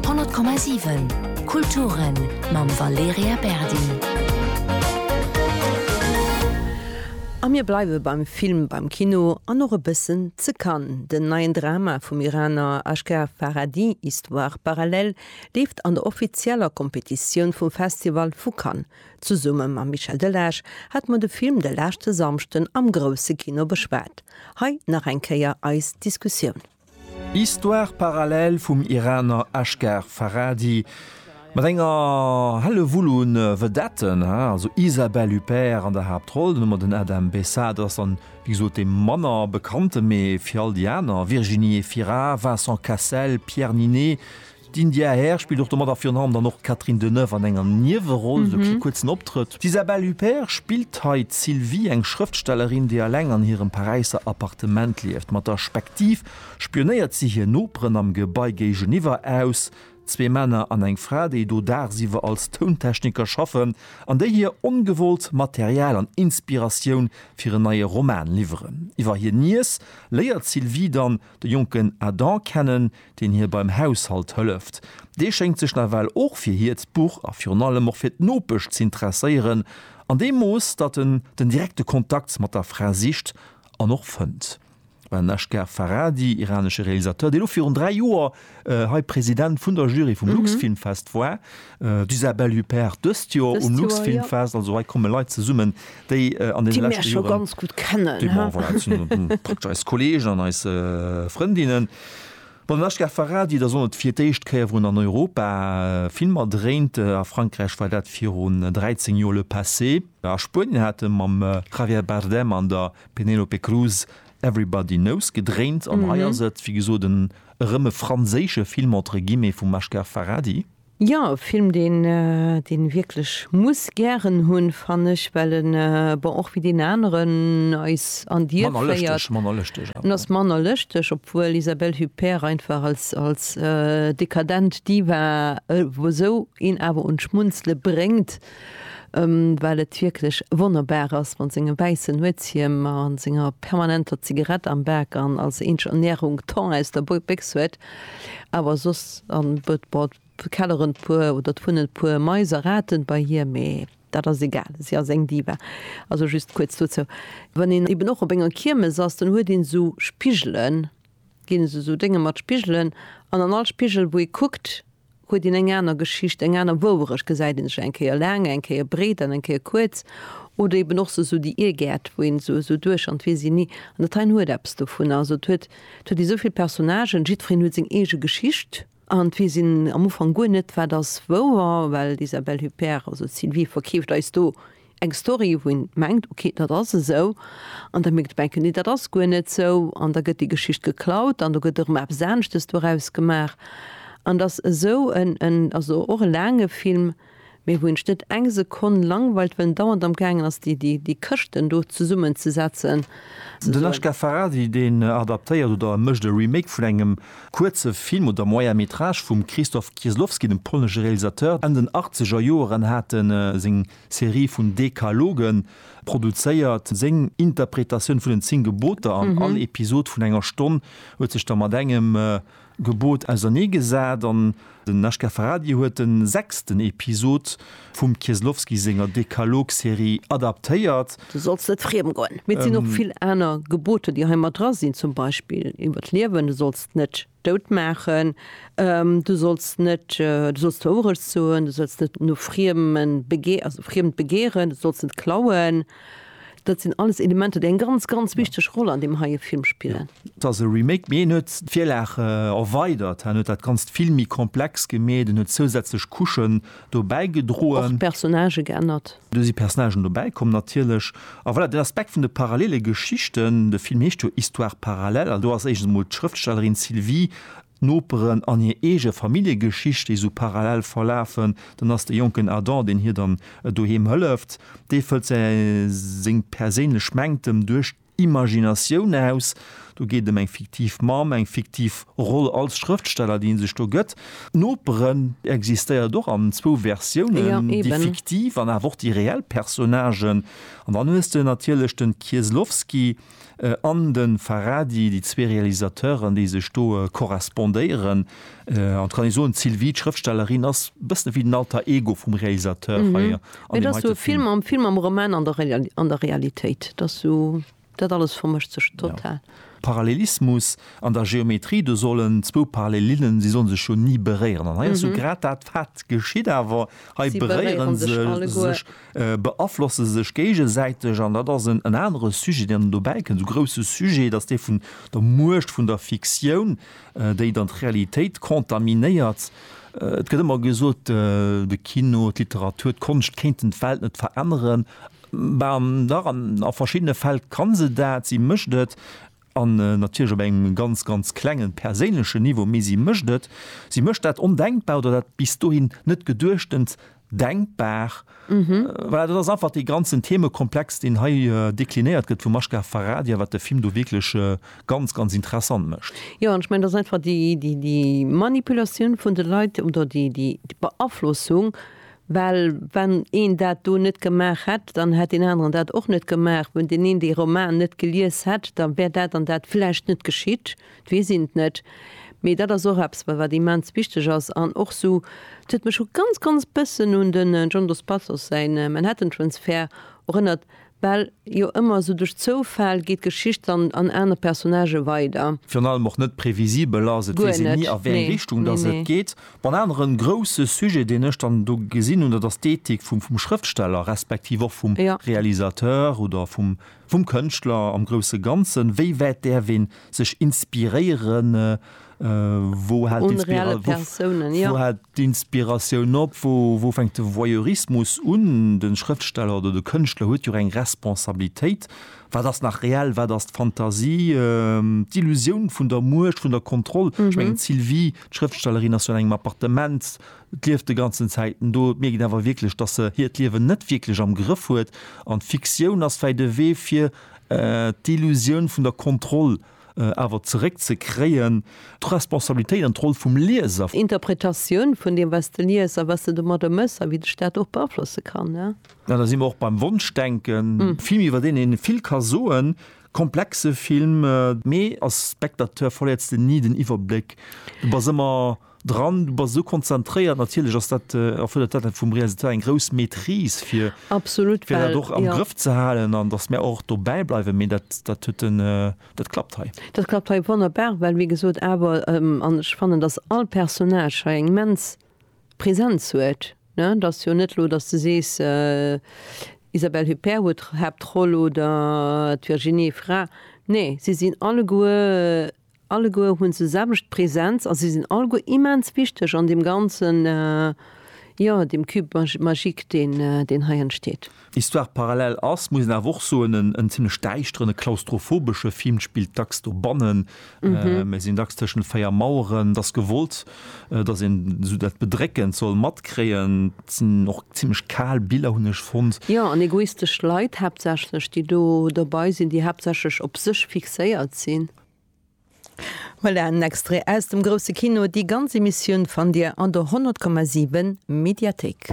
100,7 Kulturen mam Valerija Berdi. A mir bleiwe beim Film, beim Kino an och e bëssen ze Cannes. Den neien Drama vum Iraner Asghar Farhadi, Histoires parallèles, leeft an der offizieller Kompetitioun vum Festival vu Cannes. Zesumme mam Michel Delage hate mer de Film de leschte Samschden am grousse Kino beschwat. Hei nach eng Kéier eis Diskussioun. Histoire parallèle vum Iraner Asghar Farhadi mat enger Hellewull un Vedetten, also Isabelle Huppert an der Haaptroll, den Nummer den Adam Bessa, dat ass dann wéi gesot dee manner bekannten, mee fir all déi aner, Virginie Efira, Vincent Cassel, Pierre Ninet, D'India Air spillt och domat a virun allem dann och d'Catherine Deneuve an enger Nieweroll, esou kle kuerzen Optrëtt. D'Isabelle Huppert spillt hei d'Sylvie, eng Schrëftstellerin, déi eleng an hirem Paräisser Appartement lieft. Mat der Spektiv spionéiert si hir Noperen am Gebai géigeniwwer aus, zwee Männer an eng Fra, déi do daagsiwwer als Tountechniker schaffen an déi hir ongewollt Material an Inspiratioun fir en neie Roman liwweren. Iwwer hir Niess léiert d'Sylvie dann, de jonken Adam kennen, deen hir beim Haushalt hëlleft. Dee schéngt sech nawell och fir hiert Buch a virun allem och fir d'Nopesch z'interesséieren, an deem Mooss, datt en den direkte Kontakt mat der Fra sicht an och fënnt. Well den Eshgar Farhadi, iranesche Realisateur, dee lo virun dräi Joer hei President vun der Jury vum Luxfilmfest war, d'Isabelle Huppert dëst Joer um Luxfilmfest. Also hei komme Leit zesummen, déi an deene leschte Joren. Déi mär scho ganz gutt kennen, he? Bon, voilà, dat sinn praktesch eis Kollegen an eis Frëndinnen. Bon, den HK Farhadi, da soll et fir d'éischt Kéier erun an Europa Filmer dréint. A Frankräich war dat virun 13 Joer Le Passé. A Spuenien hat e mam Javier Bardem an der Penélope Cruz Everybody Knows gedréint. An hei ass et, wéi gesot, en Erëm e franséische Film entre guillemets vum Mashkar Farhadi. Jo, e Film deen een wierklech muss gären hunn, fann ech, well en, bon, och wéi deen aneren, eis an Dier féiert. Manner lëschteg, manner lëschteg. En ass manner lëschteg, obwuel Isabelle Huppert einfach als als dekadent Diva esou een awer un d'Schmunzele bréngt. well et wierklech wonnerbar ass mat sengem wäissen Nuetshiem a senger permanenter Zigarett am Bak an als eenzeg Ernährung Thon aus der Béchs huet, awer soss kelleren d'Puer oder d'wunnen d'puer Mais a Raten bei hir, mee dat ass egal, si ass eng Diva. Also just kuerz dozou, wann een eben och op enger Kiermes ass, dann huet een esou Spigelen, ginn esou Dénge mat Spigelen an an all Spigel wou ee kuckt, huet een eng aner Geschicht, eng aner Wouerecht, gesäit een sech eng Kéier laang, eng Kéier breet an eng Kéier kuerz, oder eben och sou déi Irrgäert, wou een sou duecht an et weess een ni. An dat heien huet eppes dovunner, also et huet huet ee souvill Personnagen, jiddwereen huet seng eege Geschicht an et weess een am Ufank guer net, wat ass wouer, well d'Isabelle Huppert, also d'Sylvie, verkeeft eis do Eng Story wou een mengt ok dat ass esou an da mierkt menken nee dat ass guer net sou an da gëtt déi Geschicht geklaut an do gëtt erëm eppes aneschtes doraus gemaach an dass esou en en also och e laange Film mee wou een sech net eng Sekonn langweilt well en dauernd am gaangen ass déi déi déi Këschten do zesummen ze setzen. Den Ashgar Farhadi deen adaptéiert oder e mécht e Remake vun engem kuerze Film oder Moyen Métrage vum Krzysztof Kieslowski, dem polnesche Realisateur. Enn den Achtzegerjoeren hat e seng Serie vun Dekalogen, produzéiert seng Interpretatioun vun den 10 Geboter an all Episod vun enger Stonn huet sech da mat engem Gebot ausernee gesat an den HK Farhadi huet den sechsten Episod vum Kieslowski senger Dekalog-Serie adaptéiert. Du solls net friem goen. Mee et sinn och vill aner Geboter, déi hei mat dra sinn, zum Beispill iwwer d'Liewen, Du solls net. dout maachen, du solls net, du solls d'Wourecht soen, du solls net no Friemen begee, also Friemt begeeren, du solls net klauen, dat sinn alles Elementer, déi eng ganz, ganz wichteg Roll an deem heie Film spillen. Et ass e Remake, mee en huet d'Virlag erweidert, en huet dat Ganzt vill méi komplex gemeet, en huet zousätzlech Couchen dobäi gedroen. Personnagë geännert. Do si Personnagen dobäi komm natierlech. A voilà, den Aspekt vun de parallele Geschichten, de Film heescht jo Histoires parallèles, an do ass éischtens emol d'Schrëftstellerin Sylvie, d'Noperen an hir eege Familljegeschicht, déi esou parallel verlafen. Dann ass de jonken Adam, deen hir dann doheem hëlleft, dee fëllt seng perséinlech Mängtem duerch. Imaginatioun aus. Do geet ëm eng fiktiv Mamm, eng fiktiv Roll als Schrëftsteller, déi ee sech do gëtt. D'Noperen existéiert och an zwou Versiounen, déi fiktiv an awer och déi reell Personnagen. An dann hues de natierlech de Kieslowski an de Farhadi, déi zwee Realisateuren, déi sech do korrespondéieren. En tout cas kann ee soen, d'Sylvie, d'Schrëftstellerin, ass e bëssen ewéi den Alter Ego vum Realisateur hei an deem heite Film. Et ass esou e Film am Film, am Roman, an der Realitéit. Et ass esou, dat alles vermëscht sech total. Parallelismus an der Geometrie, do sollen zwou Parallelinnen, si sollen sech jo ni beréieren. An hei ass jo grad dat, wat geschitt awer, hei beréiere se sech. beaflosse sech géigesäiteg an dat ass en anere Sujet, deen dobäikënn, esou grousse Sujet, dass dee vun der Muecht vun der Fiktioun, déi dann d'Realitéit contaminéiert. Et gëtt ëmmer gesot, de Kino, d'Literatur, d'Konscht kéinten d'Welt net veränneren. Ben dach, a verschiddene Fäll ka se dat, si mécht et. an natierlech op engem ganz, ganz klengen perséinlechen Niveau, mee si mécht et, si mécht dat Ondenkbar oder dat bis dohin net Geduechtent denkbar. Voilà, dat ass einfach dee ganzen Themekomplex, deen hei deklinéiert gëtt vum Mashgar Farhadi a wat de Film do wierklech ganz, ganz interessant mécht. Jo, an ech mengen, et ass einfach déi, déi, déi Manipulatioun vun de Leit oder déi, déi, d'Beaflossung Well wann een dat do net gemaach hätt, dann hätt deen aneren dat och net gemaach. Wann deen een dee Roman net gelies hätt, da wär dat an dat vläicht net geschitt. Et weess een et net. Mee dat ass och eppes, wat immens wichteg ass. An och esou, et huet mech e ganz, ganz bëssen un de John Dos Passos säin Manhattan Transfer erënnert, Well jo ëmmer esou duerch Zoufall geet d'Geschicht dann an aner Personnagë weider. Virun allem och net previsibel ass et, weess een ni a wéi eng Richtung datt et geet. Bon, aneren grousse Sujet deen ech dann do gesinn hunn, dat ass d'Ethik vum vum Schrëftsteller, respektiv och vum Realisateur oder vum vum Kënschtler am grousse Ganzen. Wéi wäit däerf ee sech inspiréieren Wou hält d'Inspiratioun op? Wou fänkt de Voyeurismus un? De Schrëftsteller oder de Kënschtler huet jo eng Responsabilitéit. Wat ass nach reell? Wat ass d'Fantasie? D'Illusioun vun der Muecht, vun der Kontroll. Ech mengen d'Sylvie, d'Schrëftstellerin, ass jo an engem Appartement, d'lieft de ganzen Zäiten do. Et mierkt een awer wierklech, datt se hiert Liewen net wierklech am Grëff huet. An d'Fiktioun ass vläicht e Wee fir d'Illusioun vun der Kontroll awer zeréck ze kréien. D'Responsabilitéit an d'Roll vum Lieser. Interpretatioun vun deem wat s de lies a wat s de domadder méchs a wéi dech dat och beaflosse kann. Da si mer och beim Wonschdenken. Film iwwer deen een vill ka soen, komplexe Film. Mee als Spectateur verléiers de ni den Iwwerbléck, du bass ëmmer. Dran, du bass esou konzentréiert, natierlech ass dat, erfërdert dat vum Realisateur eng grouss Maîtrise fir, Absolut, fir dat well och am jo. Grëff ze halen an datt mär och dobäi bleiwen. Mee dat, dat huet en, dat klappt hei. Dat klappt hei wonnerbar, well wéi gesot awer, an ech fannen, datt all Personnage hei eng immens Präsenz huet, ne. Et ass jo net elo, datt s de sees, Isabelle Huppert huet d'Haaptroll oder d'Virginie Efira. Nee, si sinn alleguer. Alleguer hunn se selwecht Präsenz a si sinn alleguer immens wichteg an deem ganzen, jo, deem Cube magique, deen hei entsteet. Histoire parallèle ass, muss een awer och soen, en zimlech däischteren, e klaustrophobesche Film. D'Spill spillt dacks dobannen, mir sinn dacks tëschent véier Maueren. Et ass gewollt, dass een esou dat Bedréckend soll matkréien. Et sinn och zimlech kal Biller, hunn ech fonnt. Jo, an egoistesch Leit haaptsächlech, déi do dobei sinn, déi haaptsächlech op sech fixéiert sinn. Voilà en Extrait aus dem grousse Kino. Déi ganz Emissioun fannt Dir an der 100,7 Mediathéik.